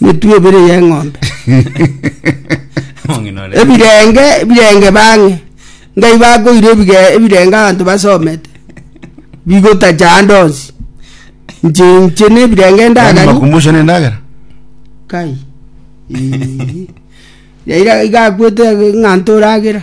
emetwe ebere y'eng'ombe Mong'ina ore. ebirenge ebirenge bang'e ngai bakoire ebige- ebirenge abanto basomete bigotacha ande onsi nche nche na ebirenge Yaani ndagani makumbusho ne ndagera kai Ii. yaira igakwete ng'a ntoragera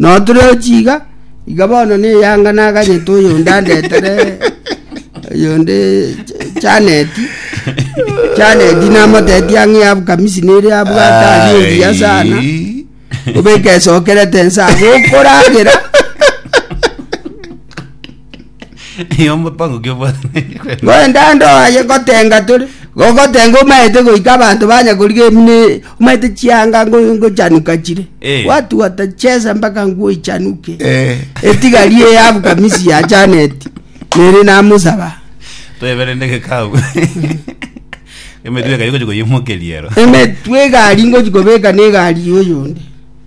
Noturochi iga, iga bono neyanga naganyete oyonde andetere oyonde Janeti, Janeti namotetia ng'a eabu kamisi nere abwate aria obuya sana, obeke esokerete ense ago okoragera. Nigo omopango ki obwataneti kwe? Ngwende ande oye ngotenga tore gogotenga omaete goika abanto banya koriga emino e- omaete chianga ngo- ngochanuka chire Eh. watu watachesa mpaka nguo ichanuke Eh. etigari eye abu kamisi ya janeti nere namusaba Tweberende gekau. Emetwe ekayo gochi koyimokeria ero. emetwe egari ngochi kobeka na egari yoyonde